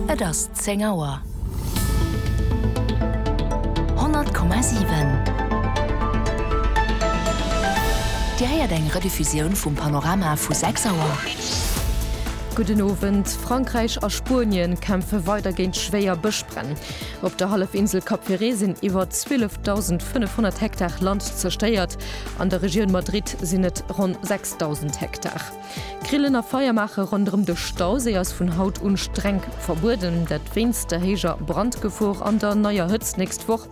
Et ass zéng Auer. 100,7 Dir héiert eng Rediffusioun vum Panorama vu 6 Auer. Gudden Owend. Frankräich a Spuenien kämpfe weider géint schwéier Bëschbränn. Op der Hallefinsel Cap Ferret sinn iwwer 12.500 Hektar Land zerstéiert. An der Regioun Madrid sinn et ronn 6.000 Hektar. Grillen a Feier maache ronderëm de Stauséi ass vun haut un streng verbueden, dat wéinst der héijer Brandgefor an der neier Hëtzt d'nächst Woch.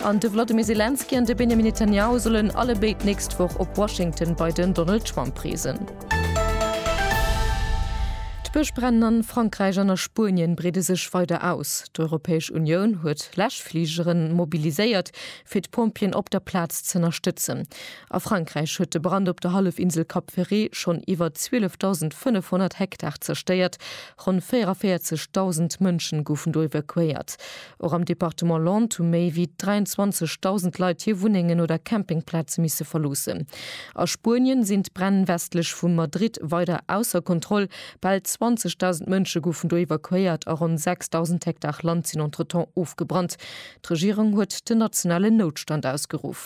An de Wladimir Selenskyj an de Benjamin Netanyahu sollen alle béid d'nächst Woch op Washington bei den Donald Trump reesen. D'Bëschbränn a Frankräich an a Spuenien breede sech weider aus. D'Europäesch Unioun huet Läschfligeren mobiliséiert, fir d'Pompjeeën op der Plaz z'ënnerstëtzen. A Frankräich huet de Brand op der Hallefinsel Cap Ferret schonn iwwer 12.500 Hektar zerstéiert. Ronn 44.000 Mënschen goufen do evakuéiert. Och am Departement Landes hu méi wéi 23.000 Leit hir Wunnengen oder Campingplaze misse verloossen. A Spuenien sinn d'Bränn westlech vu Madrid weider ausser Kontroll. Bal 20.000 Mënsche goufen do evakuéiert a ronn 6.000 Hektar Land sinn entretemps ofgebrannt. D'Regierung huet den nationalen Noutstand ausgeruff.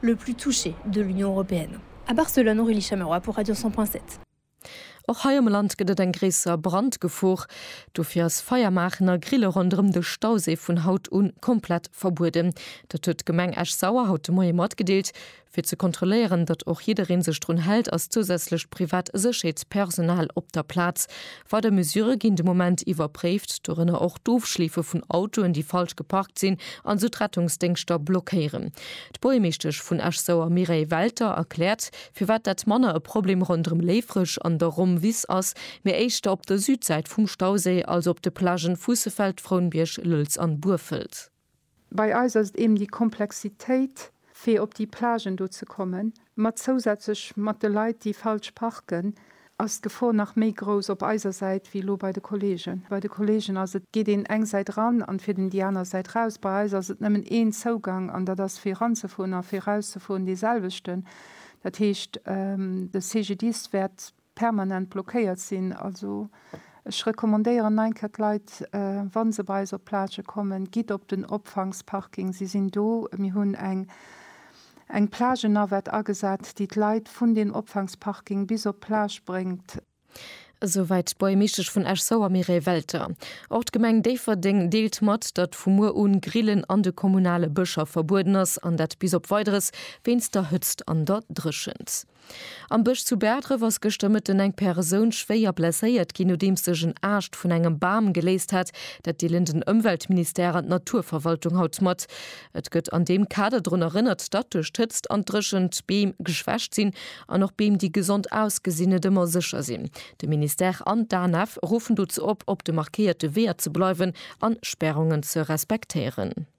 le plus touché de l'Union européenne à Barcelone, Aurélie Chamerois pour Radio 100 point 7. Och hei am Land gëtt et eng gréisser Brandgefor. Dofir ass Feier maachen a Grille ronderëm de Stauséi vun haut un komplett verbueden. Dat huet d'Gemeng Esch-Sauer haut de Moie matgedeelt. Fir ze kontrolléieren, datt och jiddereen sech drun hält, ass zousätzlecht privat Sécherheetspersonal op der Plaz. Weider Mesurë ginn de Moment iwwerpréift, dorënner och d'Ofschleefe vun Autoen, déi falsch geparkt sinn an esou d'Rettungsdéngschter blockéieren. D'Buergermeeschtesch vun Esch-Sauer Mireille Welter erkläert, firwat dat manner e Problem ronderëm Léifreg an der Romm-Wiss ass, mee éischter op der Südsäit vum Stauséi, also op de Plagen vu Sefeld, Frounbierg, Lëlz an Burfelt. Bei eis ass et eben déi Komplexitéit, fir op déi Plagen do ze kommen, mat zousätzlech mat de Leit, déi falsch parken, ass d'Gefor nach méi grouss op eiser Säit wéi elo bei de Kolleegen. Bei de Kolleegen ass et, geet een eng Säit eran an fiert een déi aner Säit raus. Bei eis ass et nëmmen een Zougang an dat ass fir eranzefueren a fir erauszefueren deeselwechten. Dat heescht, de CGDIS wäert permanent blockéiert sinn. Also ech recommandéieren nach eng Kéier d'Leit, wa se bei eis op d'Plage kommen, gitt op den Opfangsparking, se sinn do. Mir hunn eng eng Plage-Navette agesat, déi d'Leit vun deem Opfangsparking bis op d'Plage bréngt. Esouwäit d'Buergmeeschtesch vun Esch-Sauer Mireille Welter. Och d'Gemeng Déifferdeng deelt mat, datt vu muer un d'Grillen an de kommunale Bëscher verbueden ass, an dat bis op Weideres, wéinst der Hëtzt an der Dréchent. Am Bësch zu Bäerdref ass gëschter Mëtten eng Persoun schwéier blesséiert ginn, nodeems sech en Aascht vun engem Bam geléist hat. Dat deelen den Ëmweltministère an d'Naturverwaltung haut mat. Et gëtt an deem Kader drun erënnert, datt duerch d'Hëtzt an d'Dréchent d'Beem geschwächt sinn an och Beem, déi gesond ausgesinn, net ëmmer sécher sinn. De Ministère an d'ANF ruffen dozou op, op de markéierte Weeër ze bleiwen an Spärungen ze respektéieren.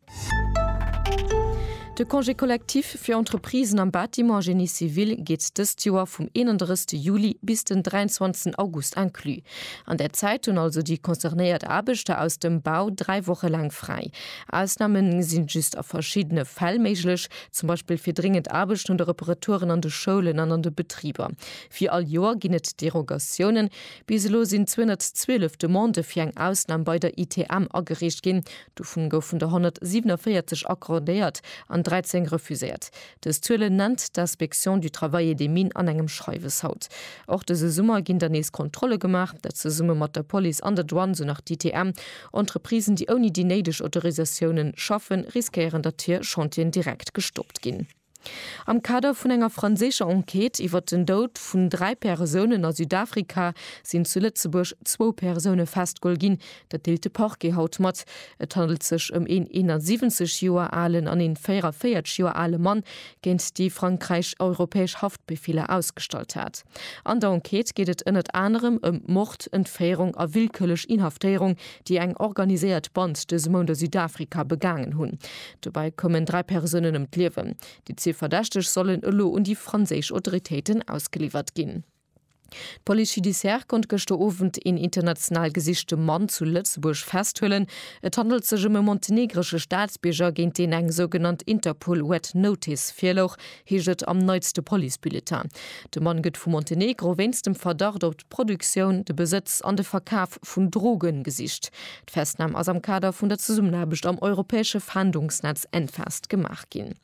De Congé collectif fir Entreprisen am Bâtiment Génie civil geet dëst Joer vum 31 Juli bis den 23 August inclus. An där Zäit hunn also déi concernéiert Aarbechter aus dem Bau dräi Woche laang fräi. Ausname sinn just a verschiddene Fäll méiglech, zum Beispill fir dréngend Aarbechten oder Reparaturen an de Schoulen an an de Betriber. Wéi all Joer ginn et Derogatiounen. Bis elo sinn 212 Demandë fir eng Ausnam bei der ITM agereecht ginn, Dovun goufen der 147 accordéiert an 13 refuséiert. Dës Zuelen nennt d'Inspection du travail et des mines an engem Schreiwes haut. Och dëse Summer ginn der nees Kontrolle gemaach, dat zesumme mat der Police an der Douane, sou nach d'ITM. Entreprisen, déi ouni déi néideg Autorisatiounen schaffen, riskéieren, datt hir Chantieren direkt gestoppt ginn. Am Kader vun enger franséischer Enquête iwwert den Doud vun dräi Persounen a Südafrika sinn zu Lëtzebuerg zwou Persoune festgeholl ginn. Dat deelt de Parquet haut mat. Et handelt sech ëm een 71 Joer alen an een 44 Joer ale Mann, géint déi Frankräich europäesch Haftbefeeler ausgestallt hat. An der Enquête geet et ënnert anerem ëm Mord, Entféierung a willkürlech Inhaftéierung déi eng organiséiert Band dëse Mount a Südafrika begaangen hunn. Dobäi koumen dräi Persounen ëm d'Liewen. Déi zwee Verdächteg sollen elo un déi franséisch Autoritéiten ausgeliwwert ginn. D'Police judiciaire konnt gëschter Owend een international gesichte Mann zu Lëtzebuerg festhuelen. Et handelt sech ëm e montenegresche Staatsbierger, géint deen eng sougenannt Interpol Red Notice virlouch, heescht et am neitste Police-Bulletin. De Mann gëtt vu Montenegro wéinst dem Verdacht op d'Produktioun, de Besëtz an de Verkaf vun Droge gesicht. D'Festnam ass am Kader vun der Zesummenaarbecht am europäesche Fahndungsnetz Enfast gemaach ginn.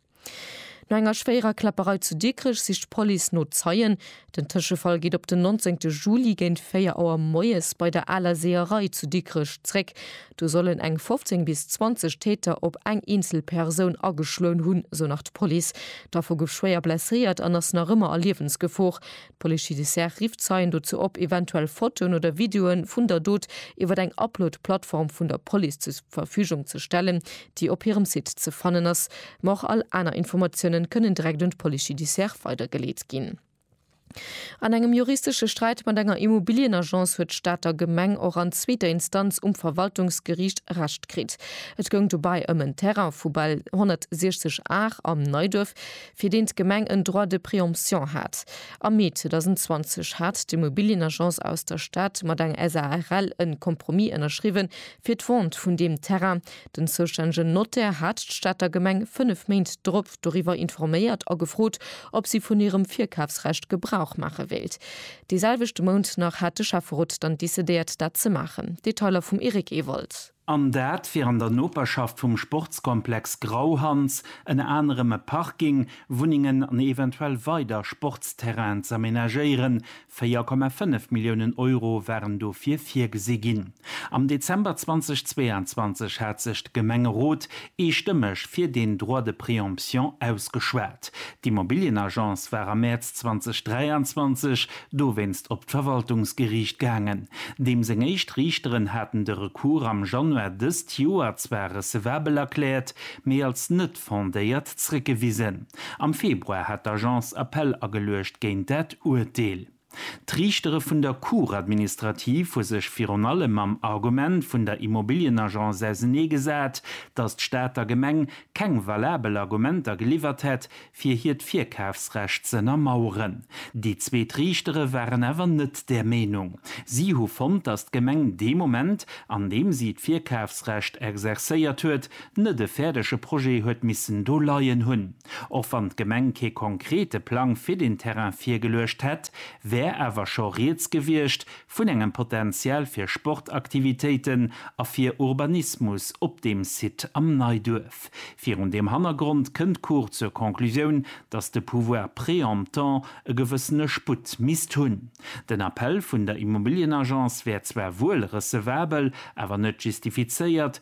No enger schwéierer Kläpperei zu Dikrech sicht d'Police no Zeien. Den Tëschefall geet op den 19 Juli géint 4 Auer moies bei der Aler Seeërei zu Dikrech zréck. Do sollen eng 15 bis 20 Täter op eng eenzel Persoun ageschloen hunn, esou nach d'Police. D'Affer gouf schwéier blesséiert an ass nach ëmmer a Liewensgefor. D'Police judiciaire rifft Zeien dozou op, eventuell Fotoen oder Videoe vun der Dot iwwer eng Upload-Plattform vun der Police zur Verfügung ze stellen, déi op hirem Site ze fannen ass, ma och all aner Informatiounen kënnen direkt un d'Police judiciaire weidergeleet ginn. An engem juristesche Sträit mat enger Immobilien-Agence huet d'Stater Gemeng och an zweeter Instanz um Verwaltungsgeriicht Recht kritt. Et goung dobäi ëm en Terrain vu bal 160 Ar am Neiduerf, fir deen d'Gemeng en Droit de préemption hat. Am Mee 2020 hat d'Immobilien-Agence aus der Stad mat eng SARL en Compromis ënnerschriwwen, fir d'Vente vun deem Terrain, Den zoustännegen Notaire hat d'Stater Gemeng fënnef Méint drop doriwwer informéiert a gefrot, ob si vun hirem Virkafsrecht Gebrauch maache wéilt. Dee selwechte Mount nach hat de Schäfferot dann decidéiert, dat ze maachen. Detailer vum Eric Ewald. An dat wier an der Noperschaft vum Sportskomplex Grauhans, ënner anerem e Parking, Wunnengen an eventuell weider Sportsterrainen z'amenagéieren, 4,5 Milliounen Euro waren dofir virgesi ginn. Am Dezember 2022 hat sech de Gemengerot eestëmmeg fir deen Droit de préemption ausgeschwat. D'Immobilienagence war am Mäerz 2023 dowéinst op d'Verwaltungsgeriicht gaangen. Deem seng éischt Riichteren haten de Recours am Januar dëst Joer zwar recevabel erkläert, mee als net fondéiert zréckgewisen. Am Februar hat d'Agence Appell ageluecht géint dat Urteel. D'Riichtere vun der Cour administrative hu sech virun allem mam Argument vun der Immobilienagence auseneegesat, datt d'Stater Gemeng keng valabel Argumenter geliwwert hätt, fir hiert Virkafsrecht z'ënnermaueren. Déi zweet Riichtere waren awer net där Meenung. Si hu fonnt, datt d'Gemeng dee Moment, an deem si d'Virkafsrecht exerzéiert huet, Net e fäerdege Projet huet missen do leien hunn. Och wann d'Gemeng kee konkrete Plang fir den Terrain virgeluecht hätt, wär awer scho rieds gewiescht vun engem Potential fir Sportaktivitéiten a fir Urbanismus op deem Site am Neiduerf. Virun deem Hannergrond kënnt d'Cour zur Conclusioun, datt de Pouvoir préemptant e gewëssene Sputt misst hunn. Den Appell vun der Immobilienagence wär zwar wuel recevabel, awer net justifizéiert,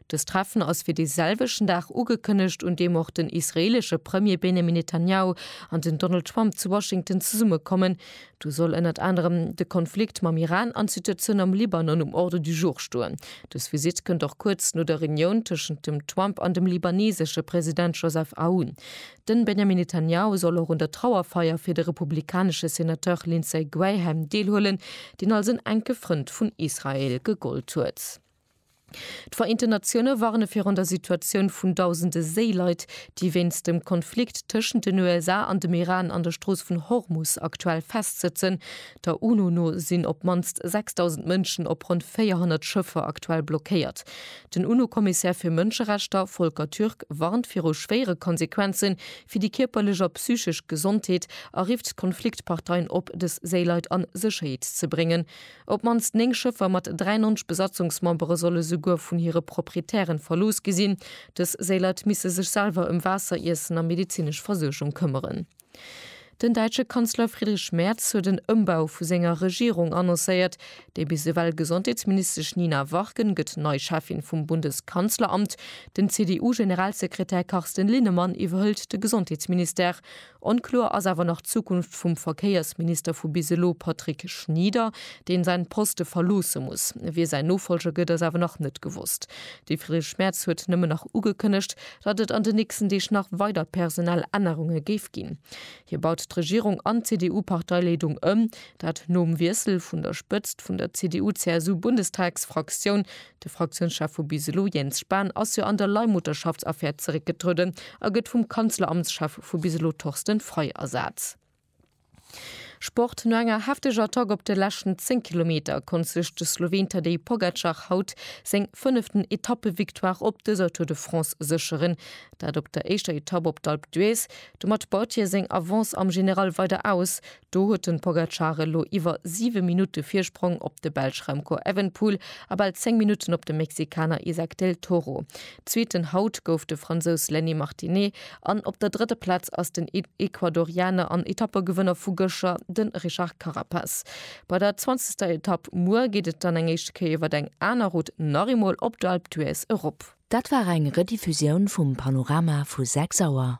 Dëst Treffen ass fir dee selwechten Dag ugekënnegt, un deem och den israeelesche Premier Benjamin Netanjahu an den Donald Trump zu Washington zesumme kommen. Do soll ënnert anerem de Konflikt mam Iran an d'Situatioun am Libanon um Ordre du jour stoen. Dës Visitt kënnt och kuerz no der Reunioun tëschent dem Trump an dem libanesesche President Joseph Aoun. Den Benjamin Netanjahu soll och un der Trauerfeier fir de republikanesche Senateur Lindsey Graham deelhuelen, deen als en enke Frënd vun Israel gegollt huet. D'Vereenten Natioune warne virun der Situatioun vun dausende Séileit, déi wéinst dem Konflikt tëschent den USA an dem Iran an der Strooss vun Hormus aktuell festsëtzen. Der UNO no sinn op d'mannst 6.000 Mënschen op ronn 400 Schëffer aktuell blockéiert. Den UNO-Kommissär fir Mënscherechter, Volker Türk, warnt viru schwéiere Konsequenze fir déi kierperlech a psychesch Gesondheet a rifft d'Konfliktparteien op, dës Séileit a Sécherheet ze bréngen. Op d'mannst 9 Schëffer mat 93 Besatzungsmembere solle souguer vun hire Proprietären verlooss gi sinn. Dës Séileit misse sech selwer ëm Waasser, Iessen a medezinesch Versuergung këmmeren. Den däitsche Kanzler Friedrich Merz huet en Ëmbau vu senger Regierung annoncéiert. Déi bis ewell Gesondheetsministesch Nina Warken gëtt nei Cheffin vum Bundeskanzleramt. Den CDU-Generalsekretär Carsten Linnemann iwwerhëlt de Gesondheetsministère. Onkloer ass awer nach d'Zukunft vum Verkéiersminister vu bis elo, Patrick Schnieder, deen säin Poste verloosse muss. Wie säin Nofolger gëtt ass awer nach net gewosst. De Friedrich Merz huet nëmmen nach ugekënnegt, datt et an de nächsten Deeg nach weider personell Ännerunge géif ginn. Hie baut d'Regierung an d'CDU-Parteileedung ëm, dat nom Wiessel vun der Spëtzt vun der CDU-CSU-Bundestagsfraktioun. De Fraktiounschef vu bis elo Jens Spahn ass jo an der Leihmutterschaftsaffär zeréckgetrueden a gëtt vum Kanzleramtschef vu bis elo Thorsten Frei ersat. Sport, No enger hefteger Attack op de leschten 10 Kilometer konnt sech de Sloween Tadej Pogacar haut seng fënneften Etappevictoire op dëser Tour de France sécheren. Dat op der éischter Etapp op d'Alpe d'Huez. Domat baut hie seng Avance am General weider aus. Do huet de Pogacar elo iwwer 7 Minutte Virsprong op de Belsch Remco Evenepoel a bal 10 Minutten op de Mexikaner Isaac del Toro. Zweeten haut gouf de Fransous Lenny Martinet an op der drëtter Plaz ass den Ecuadorianer an Etappegewënner vu gëscher, de Richard Carapaz. Bei der zwanzegster Etapp muer geet et dann eng éischte Kéier iwwer eng aner Route nach eemol op d'Alpe d'Huez erop. Dat war eng Rediffusioun vum Panorama vu 6 Auer.